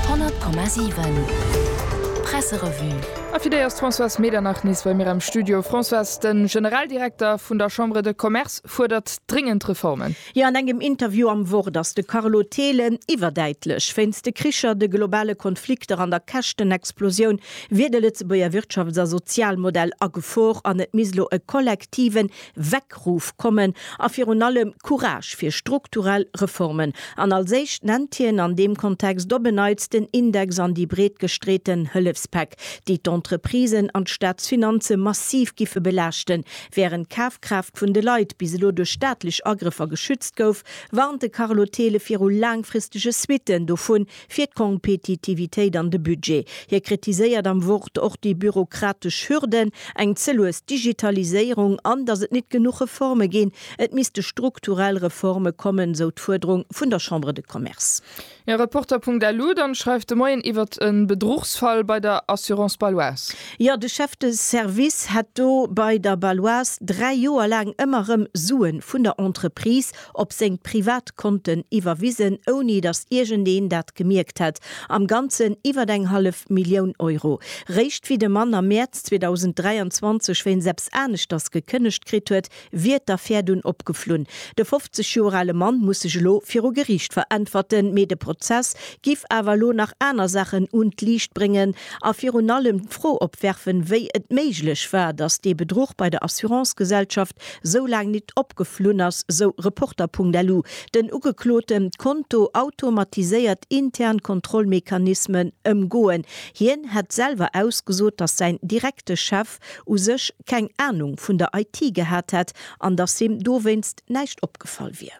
100,7 Presserevue. A fir déi ass d'Françoise Medernach nees bei mir am Studio. Françoise, de Generaldirekter vun der Chambre de Commerce fuerdert dréngend Reformen. Jo, an engem Interview am Wort ass de Carlo Thelen iwwerdäitlech. Wéinst de Kricher, de globale Konflikter an der Käschtenexplosioun wier de Lëtzebuerger Wirtschafts a Sozialmodell a Gefor an et misst elo e kollektiven Weckruf kommen a virun allem Courage fir strukturell Reformen. An als éischt nennt hien an deem Kontext op en Neits den Index an déi breet gestreeten Hëllefspäck, déi d'Entreprisen an d'Staatsfinanze massiv giffe belaaschten. Wärend d'Kafkraaft vun de Leit bis elo duerch staatlech Agrëffer geschützt gouf, warnt de Carlo Thele viru laangfristege Suitten dovun, Fir d'Kompetitivitéit an de Budget. Hie kritiséiert am Wort och déi bürokratesch Hürden, eng ze lues Digitaliséierung an datt et nit genuch Reforme ginn. Et misste strukturell Reforme kommen, sou d'Fuerderung vun der Chambre de Commerce. Ja, Reporter.lu, dann schreift de Moien iwwert e Bedruchsfall bei der Assurance Baloise. Jo, de Chef de Service hätt do bei der Baloise 3 Joer laang ëmmer rëm Suen vun der Entreprise op seng privat Konten iwwerwisen, ouni datt iergendeen dat gemierkt hätt, am Ganzen iwwert eng hallef Millioun Euro. Réischt wéi de Mann am Mäerz 2023 wéinst eppes aneschters gekënnegt kritt huet, wier d'Affär dunn opgeflunn. De 50 Joer ale Mann muss sech elo viru Geriicht veräntwerten, mee de Prozess giff awer elo nach aner Saachen un d'Liicht bréngen a virun allem d'Fro opwerfen, wéi et méiglech war, datt dee Bedruch bei der Assurance-Gesellschaft sou laang nit opgeflunn ass, sou Reporter.lu. Den Ugekloten d'Konto automatiséiert intern Kontrollmechanismen ëmgoen. Hien hätt selwer ausgesot, datt säin direkte Chef u sech keng Anung vun der IT gehat hätt an datt him dowéinst näischt opgefall wier.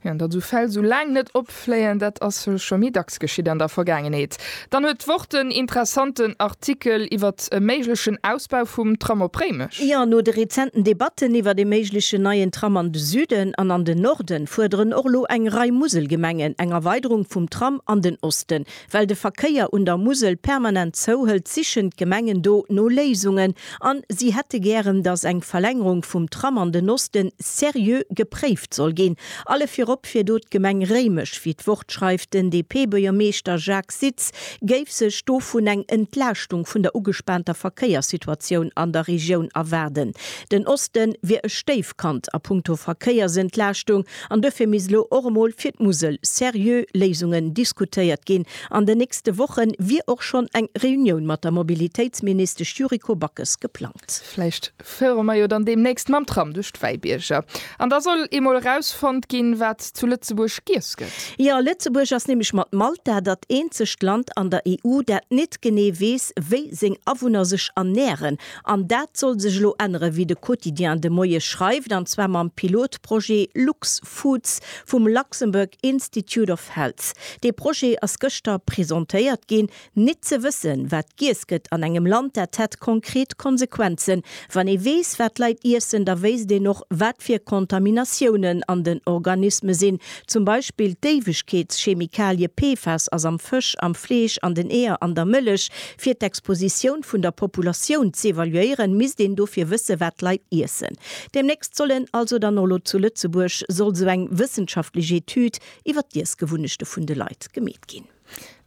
An datt esou Fäll esou laang net opfléien, dat ass scho méi dacks geschitt an der Vergaangenheet. Dann huet d'Wort den interessanten Artikel iwwert e méiglechen Ausbau vum Tram op Réimech. Jo, no de rezenten Debatten iwwert ee méiglechen neien Tram an de Süden an an den Norden, fuerderen och elo eng Rei Muselgemengen eng Erweiderung vum Tram an den Osten. Well de Verkéier un der Musel permanent zouhëlt, sichen d'Gemengen do no Léisungen an si hätte gären, datt eng Verlängerung vum Tram an den Osten seriö gepréift soll ginn. Alle virop fir do d'Gemeng Réimech, wéi d'Wort schreift. Den DP-Buergermeeschter Jacques Sitz géif sech dovun eng Entlaaschtung vun der ugespaanter Verkéierssituatioun an der Regioun erwaarden. Den Oste wier e Stéifkand a punkto Verkéiersentlaaschtung. An duerfir misst elo och emol fir d'Musel seriö Léisungen diskutéiert ginn. An den nächste Woche wier och schonn eng Reunioun mat der Mobilitéitsministesch Yuriko Backes geplangt. Vläicht fuere mer jo dann deemnächst mam Tram duerch d'Wäibierger. An da soll eemol erausfonnt ginn, wat zu Lëtzebuerg giess gëtt. Jo, Lëtzebuerg ass nämlech mat Malta dat eenzegt Land an der EU, dat net genee weess, wéi seng Awunner sech ernären. An dat soll sech elo änneren, wéi de Quotidien de Moie schreift, an zwar mam Pilotprojet LuxFoods vum Luxembourg Institute of Health. Dee Projet ass gëschter presentéiert ginn. Nit ze wëssen, wat giess gëtt an engem Land, dat hätt konkret Konsequenzen. Wann ee weess, wat d'Leit iessen, da wéisst een och, wat fir Kontaminatiounen an den Organisme sinn. Zum Beispill d'Éiwegkeetschemikalie PFAS ass am Fësch, am Fleesch, an den Eeër, an der Mëllech. Fir d'Expositioun vun der Populatioun z'evaluéieren, misst een dofir wësse wat d'Leit iessen. Demnächst soll en, also dann och elo zu Lëtzebuerg, soll esou eng wëssenschaftlech Etüd iwwer d'Iessgewunnechte vun de Leit gemeet ginn.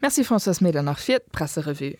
Merci Françoise Meder nach fir d'Presserevue.